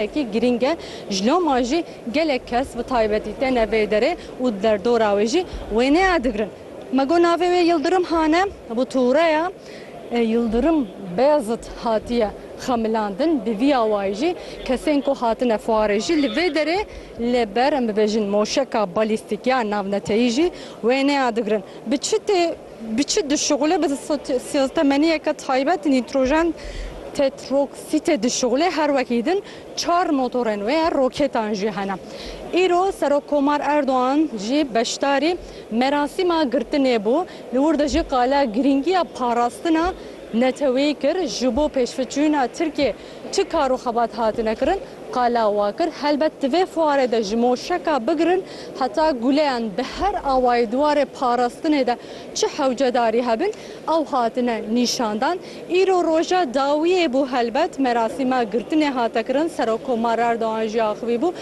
Yekî girîng e, ji loma jî gelek kes bi taybetî têne vê derê û di derdora wê jî wê nêya digirin. Me got navê wê Yildirim Han e, bi tureya Yildirim Beyazit hatiye xemilandin, bi vî awayî jî kesên ku hatine fuarê jî li vê derê li ber em bibêjin moşeka balîstîk ya navneteyî jî wê nêya digirin. Bi çi tê? Bi çi dişuxile? Bi sîstemeniyeke taybet nîtrojen tetroksîtê dişuxile. Her wekî din çar motorên wê ye, roketan jî hene. Îro Serokkomar Erdogan jî beşdarî merasîma girtinê bû. Li wir de jî qala girîngiya parastina neteweyî kir. Ji bo pêşveçûna Tirkiyê, Çi kar û xebat hatine kirin, qala wa kir, Helbet di vê fuarê de ji moşeka bigirin heta guleyan bi her awayî di warê parastinê de çi hewcedarî hebin ew hatine nîşandan. Îro roja dawiyê bû helbet merasîma girtinê hate kirin. Serokkomar Erdogan jî axivî bû.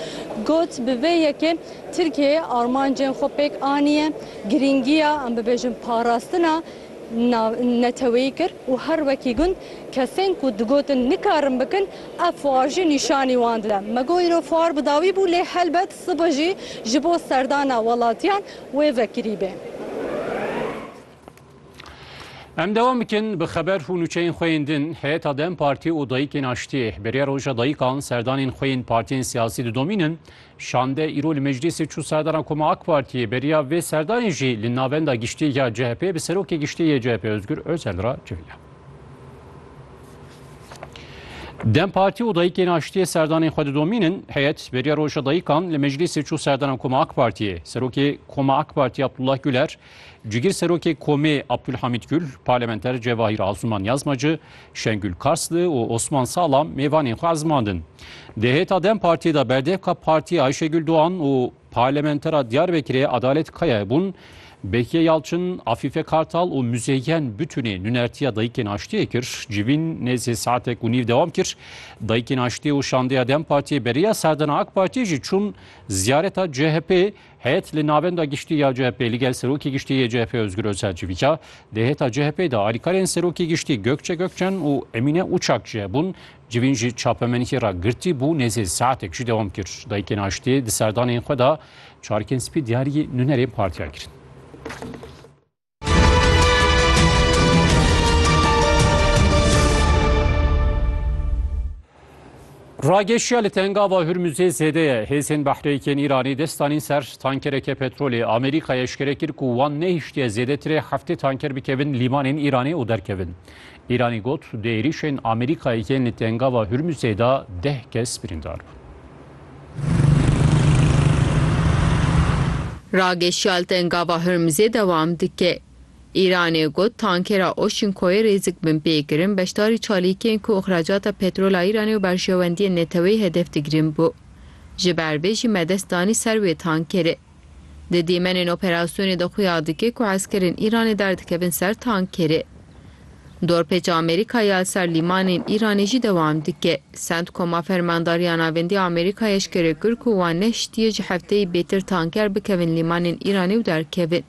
Got, Bi vê yekê Tirkiyeyê armancên xwe pêk aniye. Girîngiya em bibêjin parastina neteweyî kir û her wekî gund kesên ku digotin nikarin bikin ev fuar jî nîşanî wan dide. Me got îro fuar bi dawî bû lê helbet sibe jî ji bo serdana welatiyan wê vekirî bê. Em dewam bikin bi xeber û nûçeyên xwe yên din. Heyeta dem Partî û Dayikên Aştiyê bêriya roja dayikan serdanên xwe yên partiyên siyasî didomînin. Şande îro li meclîsê çû serdaran Koma AK Partiyê beriya vê serdayê jî li navenda giştî ya CHP'ê bi serokê giştî yê CHP Ozgur Özel re civiya. Dem Partî û dayikên aştiyê serdanên xwe didomînin, heyet beriya roja dayikan li meclîsê çû serdaran Koma AK Partiyê. Serokê Koma AK Partiyê Abdullah Güler Cigir Serokê Komê Abdulhamîd Gül, Parlamenter Cevahîr Asuman Yazmacı, Şengül Karslı û Osman Salam mêvanên xwe ezmandin. Di hêta dem Partiyê de berdevka Partiyê Ayşegül Doğan û Parlamentera Diyarbekirê Adalet Kayayê bûn. Behiye Yalçın, Afife Kartal û Müzeyyen Bütünê nûnertiya Dayikên Aştiyê kir. Civîn nêzî saetek û nîv dewam kir. Dayikên Aştiyê û Şandeya dem Partiyê beriya serdana AK Partiyê jî çûn ziyareta CHP'ê Heyet li Navenda Giştî ya CHP'ê li gel Serokê Giştî yê CHP'ê Ozgur Ozel civîka. Di hêta CHP'ê de alîkarên Serokê Giştî Gökçe Gökçen û Emîne Uçak jî hebûn. Civîn ji çapemenîkê re girtî bû nêzî saetek jî dewam kir. Dayikên Aştiyê di serdanên xwe de çarikên spî diyarî nûnerên partiya kirin. Rageşiya li tengava Hurmuzê zêde ye. Hêzên behreyekên Îranê dest danîn ser tankereke petrolê. Amerîkaya eşkere kir ku wan nehiştiye zêdetirê heftê tanker bikevin lîmanên Îranê û derkevin. Îranî got, Di êrîşên Amerîkayê yên li Tengava Hurmûzê de deh kes birîndar bûn. Rageşiya li Tengava Hurmûzê dewam dike. Îranê got, Tankera Oşinkoyê rêzik bin pê kirin, beşdarî çalîkên ku îxracata petrola Îranê û berjewendiyên neteweyî hedef digrin bû. Ji ber vê jî me dest danî ser wê tankerê. Di dîmenên operasyonê de xuya dike ku eskerên Îranê derdikevin ser tankerê. Dorpêça Amerîkayê ya ser lîmanên Îranê jî dewam dike. Centcoma Fermandariya Navendî Amerîkayê eşkere kir ku wan nehiştiye ji hefteyê bêtir tanker bikevin lîmanên Îranê û derkevin.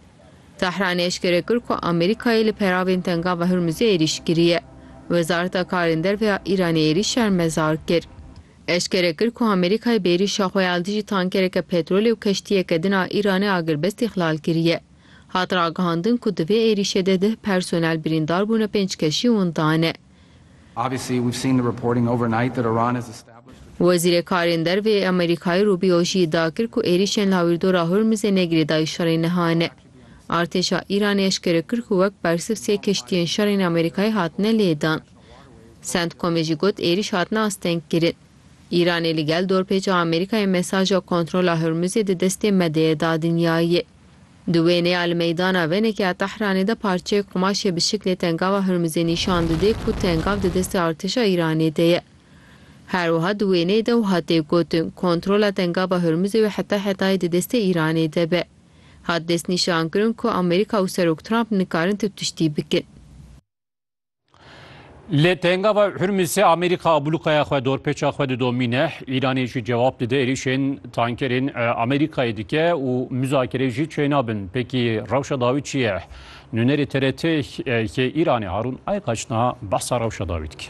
Tehranê eşkere kir ku Amerîkayê li peravên Tengava Hurmuzê êrîş kiriye. Wezareta Karên Derve ya Îranê êrîş şermezar kir. Eşkere kir ku Amerîkayê bi êrîşa xwe ya li dijî tankereke petrolê û keştiyeke din a Îranê agirbest îxlal kiriye. Hat ragihandin ku di vê êrîşê de deh personel birîndar bûne pênc keşî winda ne. Wezîrê Karên Derve yê Amerîkayê Rubio jî îdia kir ku êrîşên li Hawîrdora Hormizê ne girêdayî şerên niha ne. Artêşa Îranê eşkere kir ku wek bersiv sê keştiyên şerên Amerîkayê hatine lêdan. Centcomê jî got êrîş hatine astengkirin. Îranê li gel dorpêça Amerîkayê mesaja kontrola Hormuzê di destê medyayê da dinyayê. Di wênê ya li meydana venekê ya Tehranê de parçeyek qumaşê bi şiklê tengava Hormuzê nîşan didê ku tengav di destê artêşa Îranê de ye. Her wiha di wêneyê de wiha tê gotin, Kontrola tengava Hormuzê wê heta hetayê di destê Îranê de be. Hat destnîşankirin ku Amerîka û Serok Trump nikarin tu tiştî bikin. Lê tenga ve Hurmizê Amerîka ablûkaya xwe dorpêça xwe didomîne, Îranê jî cewab dide êrişên tankerên Amerîkayê dike û muzakere jî çênabin. Pêkî rewşa dawî çi ye? Nûnerê TRT yê Îranê Harûn Aykaç niha behsa rewşa dawî dike.